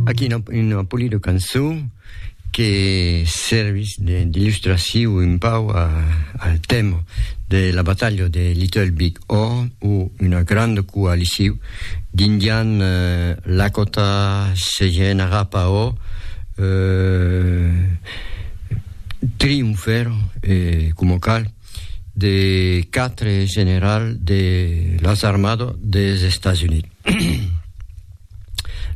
Aquí una, una polida cançó que servís d'illustraciu un pau a, al tèma de la batalha de Little Big Horn o una granda coaliciu d'indian eh, Lakota, Sejen, Arapaho, eh, triomfèr, eh, coma cal, de quatre generals de las armadas des Estats Units.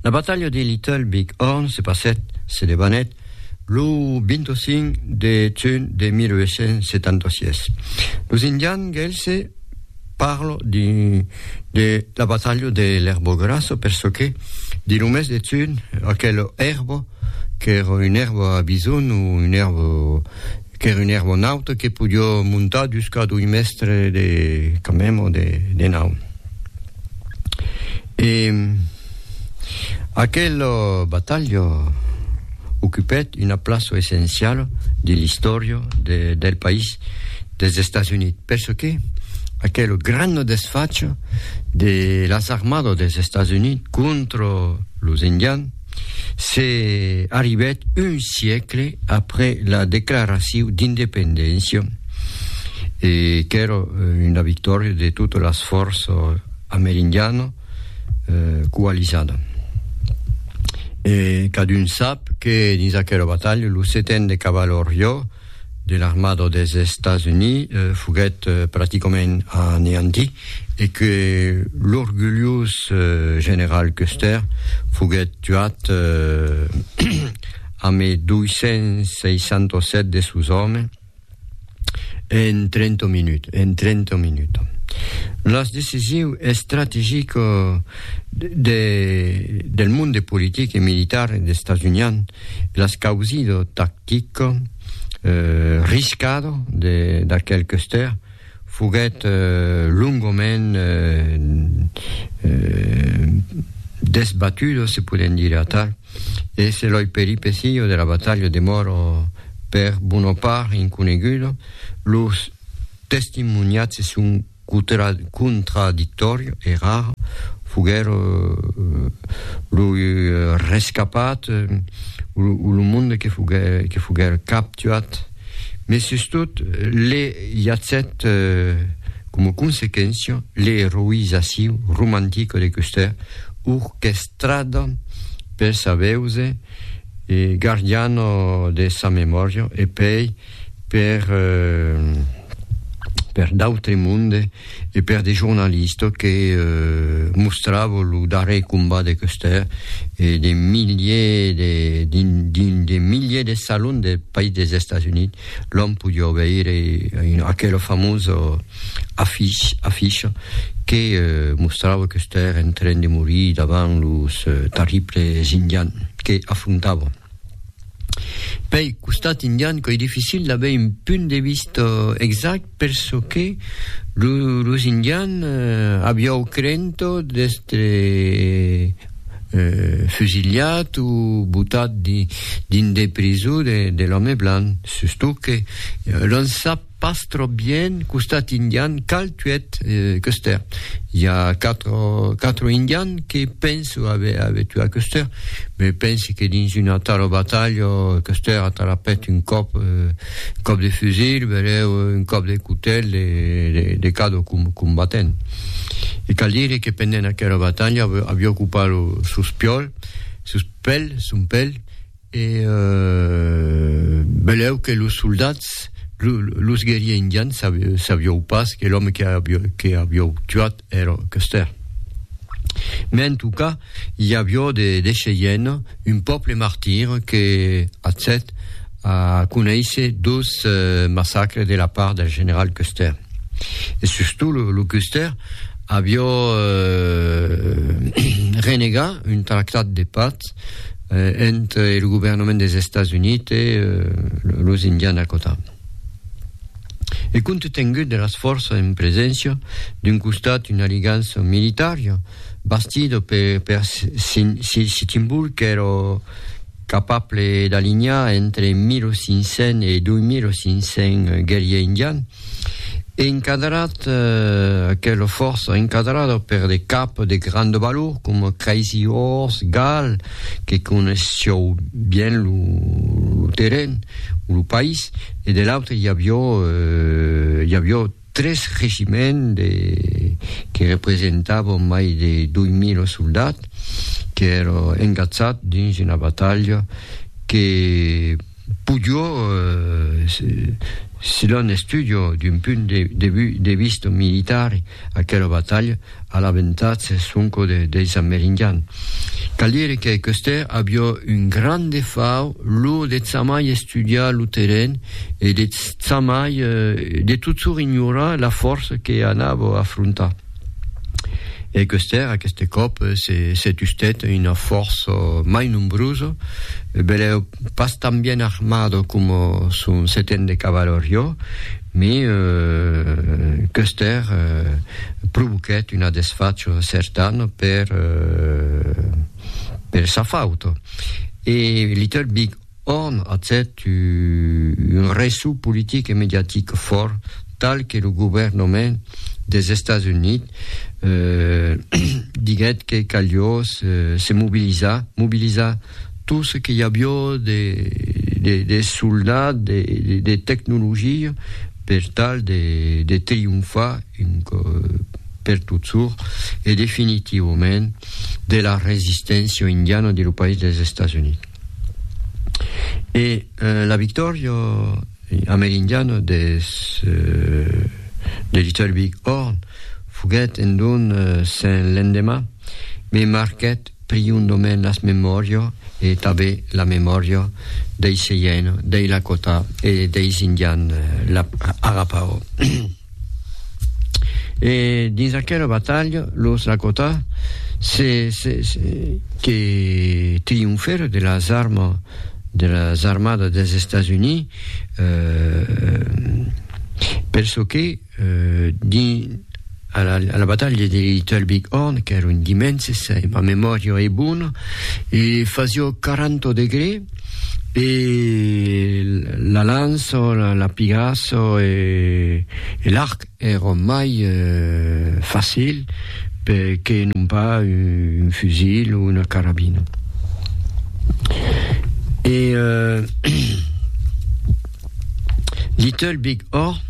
La batalha de Little Big Horn se passèt, se debanèt, lo 25 de junh de 1876. Los Indians Gelse parlo de la batalha de l'Erbo Grasso per çò que, dins lo mes de junh, aquel èrbo, qu'èra un èrbo a bison o un èrbo Qu'ère un aeronauta que podió montar dus cà doi mèstre de camèm o de nau. E aquel batalha ocupèt una plaça essenciala de l'istòria del país dels Estats Units, perçòque aquel gran desfach de las armadas dels Estats Units contra los Indians, c'est arribèt un siècle après la declaracion d'independéncia e qu'èra una victòria de totes las fòrças amerindianas eh, coalizada. E cadun sap que dins aquela batalha lo seten de cavalariá de l'armada dels Estats Units foguèt practicament aneantit e que l'orgulhós general Custer foguèt tuat amé 267 de sos òmes en 30 minutas. Las decisiu estrategica del monde politic e militar estatunian L'escausido tactico riscado d'aquel Custer foguèt longament desbatudo, se podèm dire atal, e se loi peripeciio de la batalha demòra per bona part inconegudo, los testimoniatges son Contradictòri e rar foguèt lo rescapat o lo monde que foguèt captuat, mai sustot le jacèt coma consequéncia l'eroizacion romantica de Custer orquestrada per sa veusa e gardiana de sa memòria e pei per per d'autres monde e per de jornalistes que mostrava lo darrer combat de Custer e de milliers de dins dins de milliers de salons del país des Estats Units l'òm podiá veire aquela famosa affiche affiche que mostrava Custer en train de morir davant los terribles indians que afrontava Pei costat indian qu'ei dificil d'aver un punt de vista exact perçò que lo, los indians eh, aviáu crento d'estre eh, fusilhat o botat dins de prisó de, de l'òme blanc, sustot que l'on sap Pas trop bien costat indian cal tuet Custer i a quatre quatre indian que penso ave ave tuat Custer me pense que dins una tala batalha Custer a talapet un còp un còp de fusil bereu un còp de cotel de de de cada combatent e cal dire que pendent aquela batalha aviá ocupat lo sos piòl sos pèl son pèl E belèu que los soldats, los guerriers indians, sabiou pas que l'òme que aviou tuat èra Custer. Mès en tot cas, i avió de Cheyenne, un pòble martir que accèt a conéisser dos massacres de la part del general Custer. E sustot lo Custer avió renegat un tractat de patz, eh, ent e lo governament des Estats Unite eh, los Indians Dakota. E compte tengut de las forças en preséncia, d'un costat una aligança militaria, bastida per, per Sin- Si- Sitting Bull qu'èra capable d'alinhar entre 1500 e 2500 guerriers indians, Encaderat, aquela fòrça encadrada per de caps de grand valor coma Crazy Horse, Gal, que coneishiou bien lo, lo terren, o lo país, e de l'autre i avió, eh, i avió tres regiments de, que representavan mai de 2000 soldats, qu'èra engatzat dins una batalha que, Pujo si l'on estudio d'un punt de vista militar aquela batalha a l'avantatge sonco deis amerindians. Cal dire que Custer aviá un grand defau, lo de jamai estudiar lo terren e de jamai, de totjorn ignorar la fòrça que anava afrontar. E qu'Eustèr, aqueste còp, se se tustèt una fòrça mai nombrosa, belèu pas tan bien armada coma son seten de cavalariá, me qu'Eustèr provoquèt una desfacha certana per per sa fauta. E Little Big Horn atèt un ressò politic e mediatic fòrt tal que lo governament des Estats Units diguèt que calió se mobilizar, mobilizar tot ce que i avió de soldats, de tecnologia per tal de trionfar un còp per totjorn e definitivament de la resisténcia indiana de lo país des Estats Units. E la victòria amerindiana des de Little Big Horn foguèt en don sen l'endemà, me marquèt priondament las memòrias e tanben la memòria dei Cheyenne, dei Lakota e deis Indians Arapaho. E dins aquela batalha, los Lakota se, se, se, que trionfèron de las armas de las armadas dels Estats Units, euh, per çò que euh, dins a la, a la batalha de Little Big Horn, qu'èra un dimènse, se ma memòria es bona, e fasió 40 degrés, E la lanço, la pigasso e l'arc èron mai facil que non pas un fusil o una carabina. E Little Big Horn,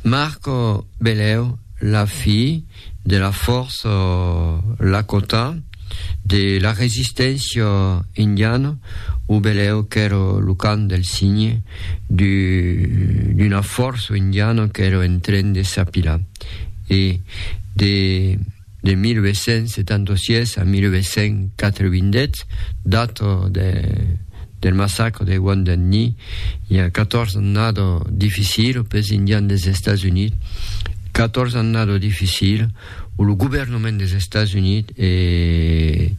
Marco Beleu, la fi, de la fòrça Lakota, de la resisténcia indiana, o belèu qu'èra lo cant del signe d'una fòrça indiana qu'èra en tren de s'apilar. E de 1876 a 1888, data de del massacre de Wounded Knee i a 14 annada dificila pels Indians dels Estats Units, 14 annada dificila o lo governament dels Estats Units e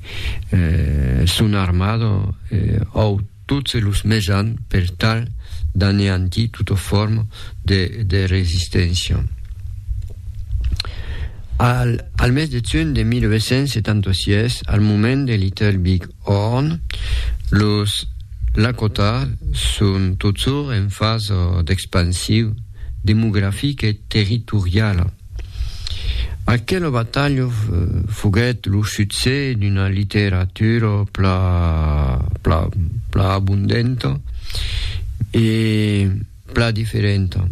eh, son armada eh, au tots los mesans per tal d'aneantir tota forma de, de resisténcia. Al, al mes de juny de 1976, al moment de Little Big Òrn, los Lakota son totjorn en fasa d'expansiu demografica e territoriala. Aquela batalha foguèt lo succès d'una literatura pla abondenta e Plan diferenta.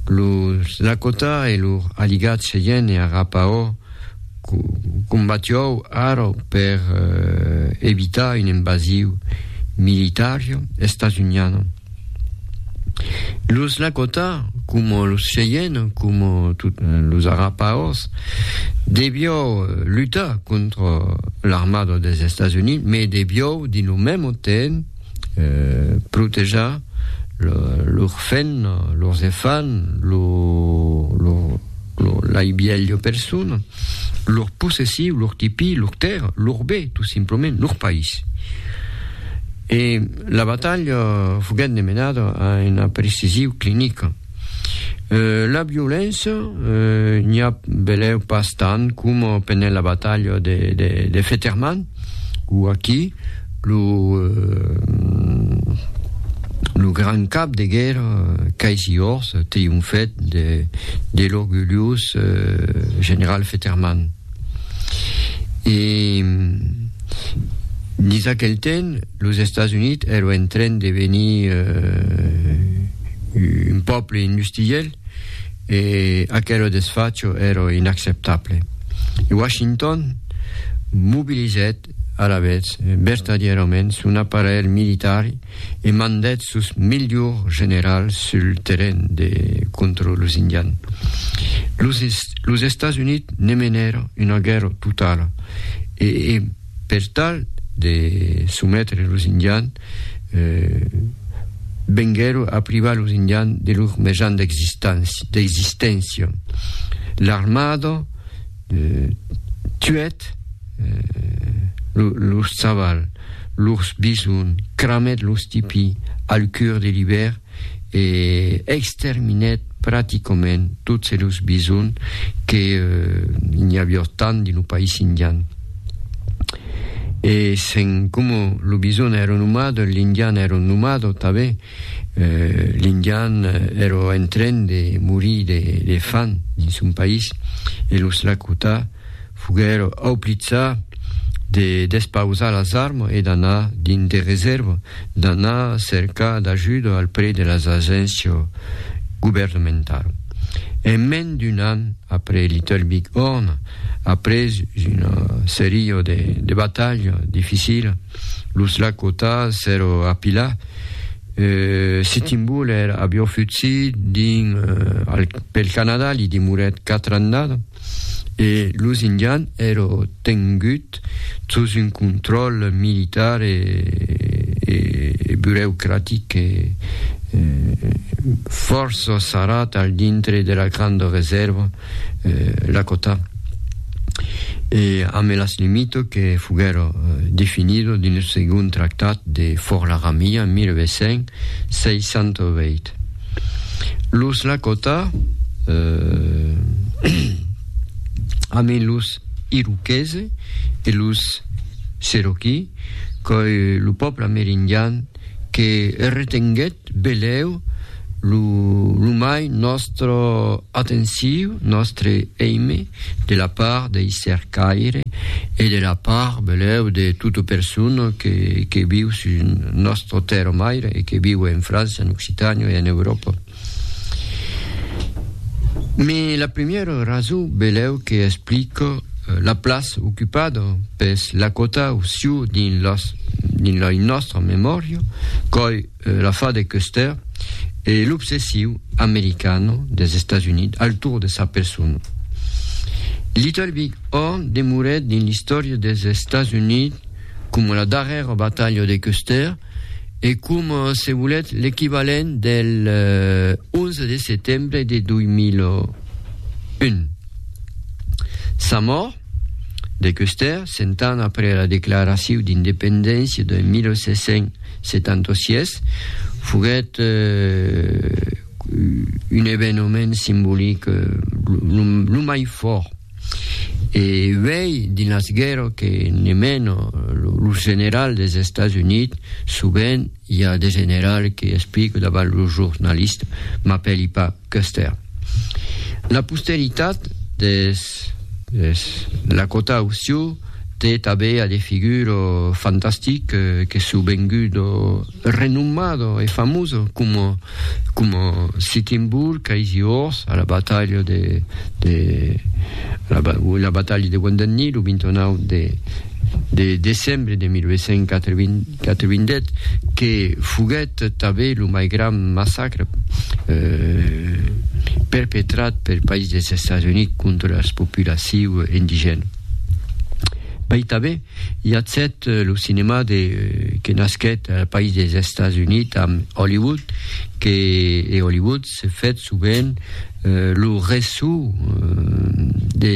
Los Lakota e lor aligat Cheyenne Arapaho combatió ara per evitar un envasiu militar estats-uniana. Los Lakota, coma los Cheyenne, coma los Arapahos, devió lutar contra l'armada dels Estats Units, mas devió dins lo mèmo temps protejar lor fen, lors efan, lo, lo, lo, lai bielho persona, lor possessiu, lor tipi, lor terra, lor bé, tout simplement, lor país. E la batalha foguèt demenada a una precisiu clinica. Euh, la violéncia, euh, n'i a belèu pas tant coma pendent la batalha de, de, de Fetterman, o aquí, lo, euh, lo gran cap de guèrra, Casey Horth, trionfèt de, de l'orgulhós euh, general Fetterman. E, dins aquel temps, Los Estats Units èro en tren de venir un pòble industriel e aquero desfacho èro inacceptable. E Washington mobilizèt alavetz vertadièrament son aparelh militari e mandèt sos melhors generals sul terren de contra los Indians. Los Estats Units ne menèro una guèrra totala e Per tal de sometre los Indians, venguèron a privar los Indians de lor mejan d'existéncia. L'armada tuèt lors chavals, lors bisons, cramèt los tipis al cur de l'ivèrn e exterminèt practicament tots los bisons que n'i avió tant dins lo país indian. E se'n coma lo bison èra un nomade, l'indian èra un nomade tanben, l'indian èra en tren de morir de fan dins son país e los Lakota foguèr auplitzar de despausar las armas e d'anar dins de resèrva, d'anar cercar d'ajuda al près de las agéncias governamentalas. En mens d'un an après Little Big Horn, après una seria de batalhas dificilas, los Lakota s'èra apilat, Sitting Bull èra aviá fugit dins pel Canadà, li demorèt quatre annada. e los Indians èro tengut sus un contròl militar e bureucratic e fòrça sarrat al dintre de la granda resèrva Lakota e amb las limitas que foguèro definidas dins lo segond tractat de Fort Laramie en 1868. Los Lakota, eh, amé los Iroquese e los Cherokee, qu'oi lo pòble amerindian que retenguèt belèu lo, lo mai nòstre atenciu, nòstre èime, de la part dei cercaire e de la part, beleu, de tota persona que, que viu sus nòstra tèrra maire e que viu en França, en Occitània e en Euròpa. Mes la primièra rason, beleu, que explica la plaça ocupada pes lacotau siu dins, dins lei nòstra memòria, coi, la fa de Custer e l'obsessiu americano dels Estats Units al torn de sa persona. Little Big Horn demorèt dins l'istòria dels Estats Units coma la darrèra batalha de Custer e coma, se volètz, l'equivalent del 11 de setembre de 2001. Sa mòrt, De Custer, cent ans après la declaraciu d'independéncia de 1776, foguèt un evenement simbolic lo mai fòrt. E uèi, dins las guèrras que ne mena lo general dels Estats Units, sovent i a de generals que explico davant lo jornalista, m'apèli pas. Custer. La posteritat des Lakota o Sioux te tabea de figuro fantastic que su vengudo renommado e famoso como como Sitting Bull, Crazy Horse a la batalha de de la, la batalha de Wounded Knee lo 29 de de decembre de 1880 Catevindèt que foguèt tanben lo mai grand massacre perpetrat pel país dels Estats Units contra las populaciu indigèna. Mai tanben i a cèt lo cinema de que nasquèt al país dels Estats Units amb Hollywood que e Hollywood se fèt sovent lo ressò de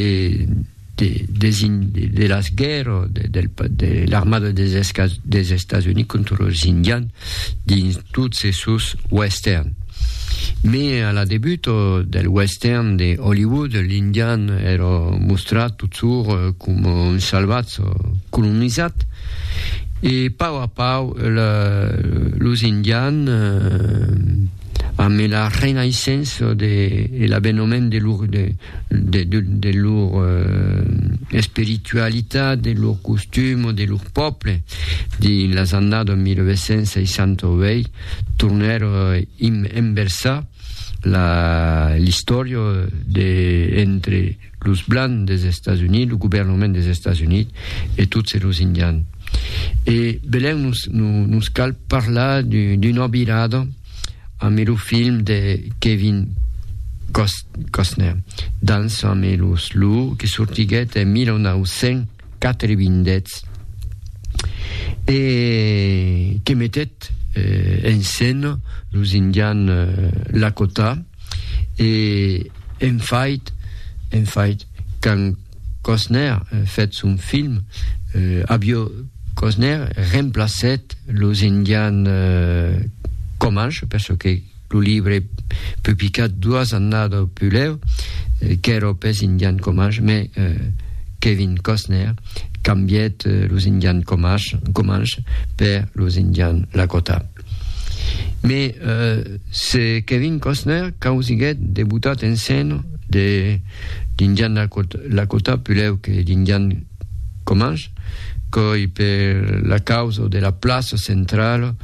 de las guèrra de l'armada des Estats Units contra los Indians dins tots e sos western. Me a la debut del western de Hollywood, l'Indian èra mostrat totsur coma un salvatz colonizat e pau a pau los Indians, amb la renaissença de, e l'abenament de lor, de, de, de, de lor eh, espiritualitat, de lor costum, de lor pòble, dins las annadas 1968, tornèr eh, inversar l'istòria de, entre los blancs des Estats Units, lo governament des Estats Units e tot se los indians. E belèu nos, nos cal parlar d'una virada amb lo film de Kevin Costner, Dança amb los loups, que sortiguèt en 1900. quatre vindèths e que metèt en scène los Indians Lakota e en fait, en fait, quand Costner fèt son film, avió Costner remplacèt los Indians Comanche, per çò que Lo libre publicat doas annada o pulèu, qu'èro pes Indian Comanche, mai Kevin Costner cambièt los Indian Comanche per los Indian Lakota. Mai se Kevin Costner causiguèt de botat en sen d'Indian Lakota pulèu que d'Indian Comange? Coi per la causa de la plaça centrala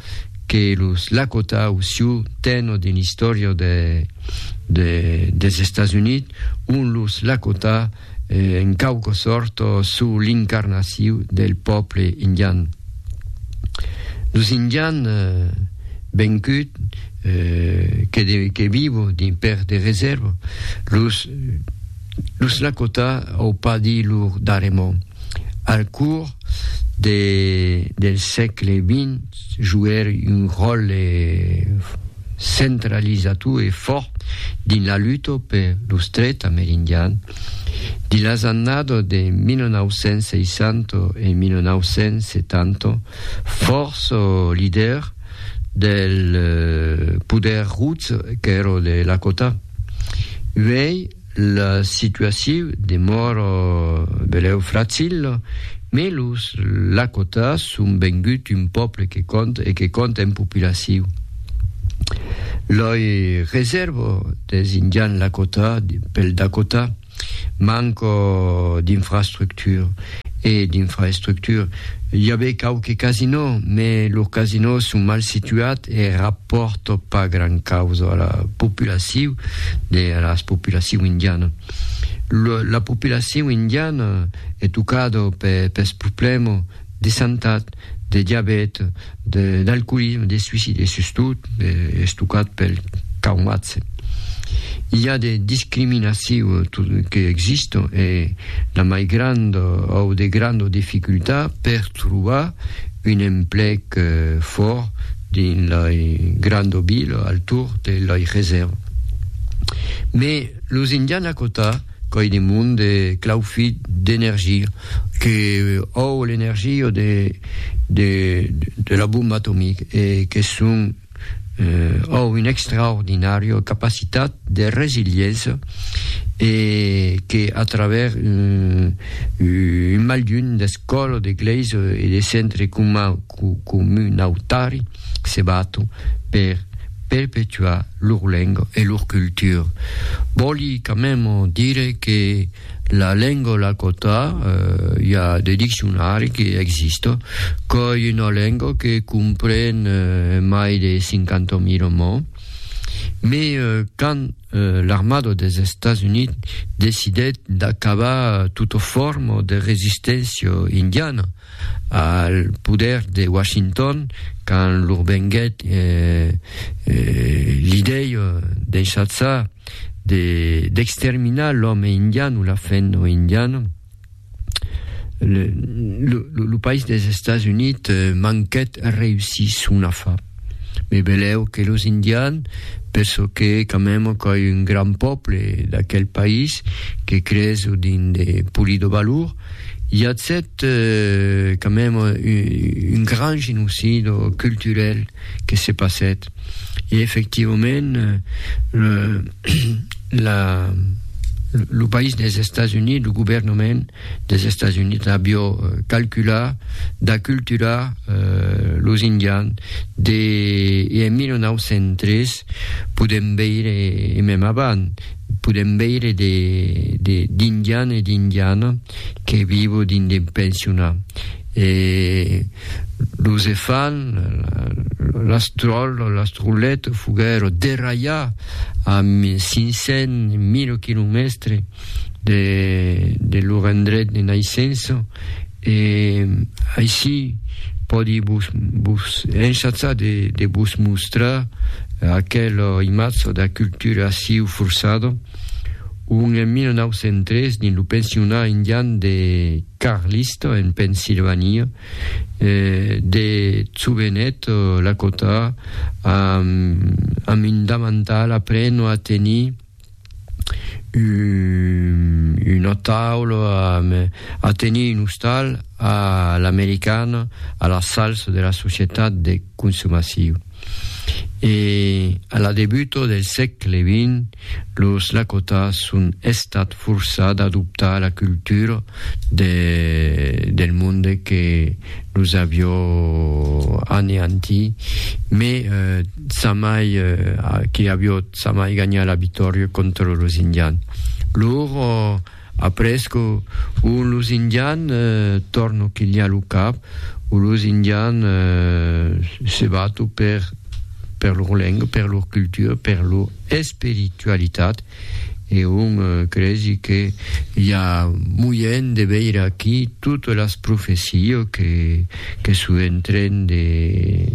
que los Lakota au Sioux tènho dins l'istòria des Estats Units, ont los Lakota en quauqua sòrta sou l'incarnaciu del pòble indian. Los indian vencut que vivo dins per de reserva, los. Lo snacotà au pas di lur daremo, al curs de, del sègle xx, joguèr un ròtle centralizator e fòrt dins la luta per lo Stret Amerindian. Dins las annadas de 1960 e 1970, fòrça lidèrs del poder rus qu'èra de Lakota, Uèi la situaciu demòra belèu fracila, mes los Lakotahs son vengut un pòble que compta e que compta en populaciu. Loi resèrva des Indians Lakotahs pel Dakota. Manco d'infrastructure e d'infraestructure i avè quauque casinò, mè los casinò son mal situat e rapòrto pas gran causa a la populaciu de a las populaciu indiana. Lo, la populaciu indiana è tocado per pes problèmo de santat, de diabèt, d'alcoolisme, de suicide e sustot estocat pel traumatge. I a de discriminacion que existon e la mai granda au de granda dificultat per trobar un emplec fòrt dins lai granda vila al torn de lai reserva. Mès los indianakota Qu'òi de monde, clau fit d'energia, que òu l'energia de de de la bomba atomic e que son òu un extraordinario capacitat de resiliença e que a travèrs un malhun d'escòla, de glèisa e de centre comunautari, se baton per perpetuar lor lenga e lor cultura. Vòli quand même dire que la lenga lakota, eh, i a de diccionari que exista, qu'ei una lenga que compren eh, mai de 50.000 mots, me eh, quand eh, l'armada des Estats Units decidèt d'acabar tota forma de resisténcia indiana, al poder de Washington quand lor venguèt l'idèi d'enchaçar d'exterminar l'òme indian o la fèn o indiana lo país des Estats Units manquèt reussir son afà. Me beleu que los indians, per çò que quand même coi un grand pòble d'aquel país que creso dins de Pulido Balourd, i a cet euh, quand même un grand genocido culturel que se passèt. E efectivament euh, la, lo país des Estats Units, lo governement, des Estats Units avió calculat d'aculturar los Indians de e en 1903 podèm veire e mèm avant podèm veire de de d'Indians e d'Indianas que vivo dins de pensionats e los e fan las tròlles las trollettes foguèron derralhats a 500 1000 quilomètres de, de lor endret de naissença, e aicí pòdi vos, vos enchatzar de, de vos mostrar aquela imatge da cultura aciu forçada, ont en 1903, dins lo pensionat indian de Carlisle, en Pensilvania, eh, de jovenet Lakota, amb, amb un damantal, apreno a tenir, una taula a tenir un ostal a l'americana a la salsa de la societat de consumaciu. E a la debuta del sègle XX, los Lakotas son estat forçat d'adoptar la cultura de, del monde que los avió aneantit, mai Sa mai que aviot sa mai ganhat la victòria contra los Indian. Lor après que un los Indian torno quilhar lo cap o los Indian se bato per per lor lenga, per lor cultura, per lor espiritualitat. E un cresi que i a moièn de veire aquí totes las profesio que son en tren de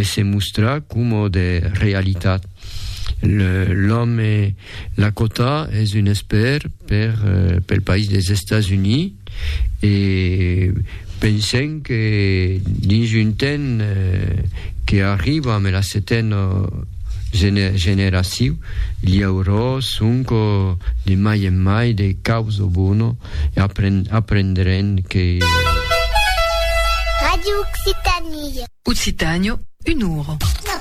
se mostrar coma de realitat. L'òme Lakota es un espèr pel país dels Estats Units. E pensem que dins un temps que arriba ame la setena generaciu, li aurò sonco de mai en mai de caus o bono e aprendrem que. Radio Occitanie. Occitània, un ora.